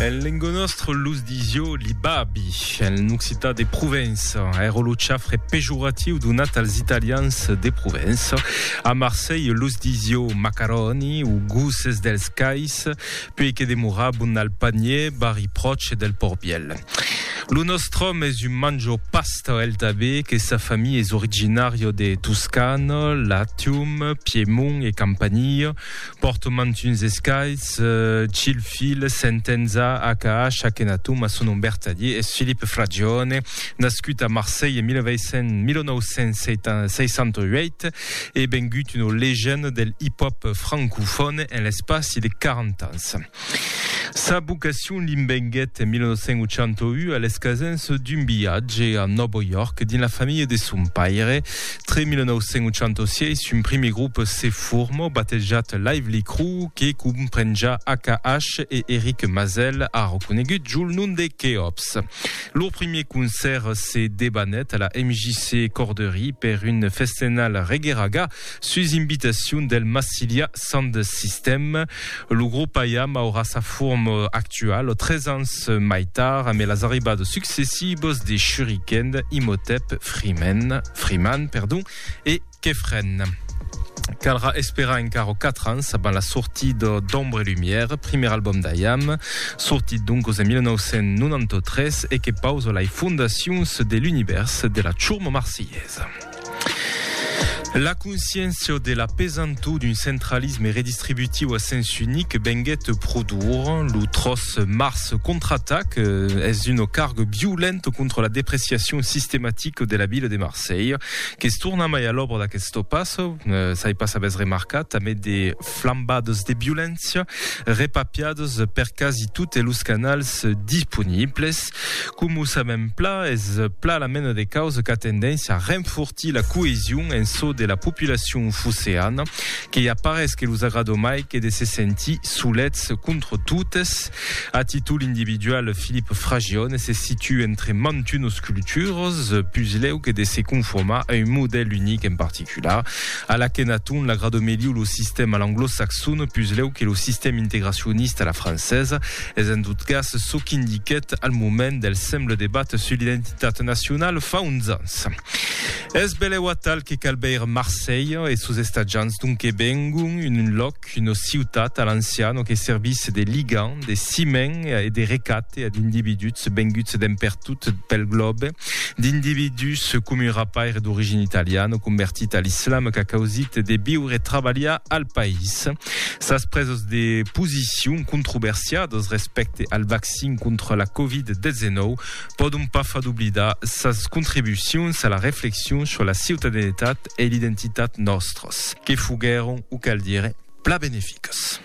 En lengo nostre los disio li babi, en occitan de Provença, èra lo chafre pejoratiu donat als italians de Provença. A Marselh los disio macaroni o gosses dels cais, puèi que demorabon al panier, barri pròche del Pòrt Vièlh. Lo nòstre òme es un manjo pasta el tanben, que sa familha es originària de Toscana, Latium, Piemont e Campania. Pòrto mantuns escais, Chill Fil, Sentenza, AKH, Akhenatum, a son nom vertadier es Philippe Fragione, nascut a Marselh en 1968 e bengut una legenda del hip-hop francofòne en l'espaci de 40 ans. Sa vocacion li venguèt en 1981 a l'escasenç d'un viatge a Nòvo York dins la familha de son paire. Tre 1986, un primier grop se forma, batejat Lively Crew, que comprenja AKH e Eric Mazel, ara conegut jol nom de Keops. Lor primier concèrt se debanèt a la MJC Corderie per un festenal reggae-raga, Sus invitacion del Massilia Sound System, lo grop IAM aurà sa forma actuala tres ans mai tard amé las arribadas successibas de Shuriken, Imhotep, Freeman, Freeman perdon, e Kefren. Calrà esperar encara quatre ans abans la sortida d'Ombre et Lumière, primièr album d'IAM, sortit doncas en 1993 e que pausa lai fondacions de l'univèrs de la churma marsilhesa. La consciéncia de la pesantor d'un centralisme redistributiu a sens unic venguèt pro dura. Lo 3 març contraatac eh, es un carg violent contra la depreciacion sistematica de la vila de Marselha, que's torna mai a l'òbra d'aque's topàs, eh, s'ai pas avès remarcat, tanben de flambades de violéncia, repapiados per quasi totes los canals disponibles. Com o sabem pla, es pla la mena de causa qu'a tendéncia a renfortir la coesion en çò de la populacion foceana, que i a parés que los agrado mai que de se sentir solets contra totes. A títol individual, Philippe Fragione se situa entre mantunos cultures, puslèu que de se conformar a un modèl unic en particular. Cula, a l'Akhenaton, l'agrado melhiu lo sistèm a l'anglosaxon puslèu que lo sistèm integracionista a la francesa, es en tot cas çò qu'indiquèt al moment del semble debat sus l'identitat nacionala fa uns ans. Es belèu atal que cal veire Marselha e sos estatjants d'on que vengon, un lòc Lluc, una ciutat a l'anciano que servisse de ligam, de cimen e de recate ad individuts venguts d'en pertot pel glòbe, d'individus com un rapaire d'origina italiana convertit a l'islam qu'a causit de viure e trabalhar al país. Sas presos de posicion controversiadas respècte al vaccin contra la Covid-19 pòdon pas far doblidar sas contribucions a la reflexion sur la ciutadenetat e l'identitat nòstras, que foguèron, o cal dire, plan beneficas.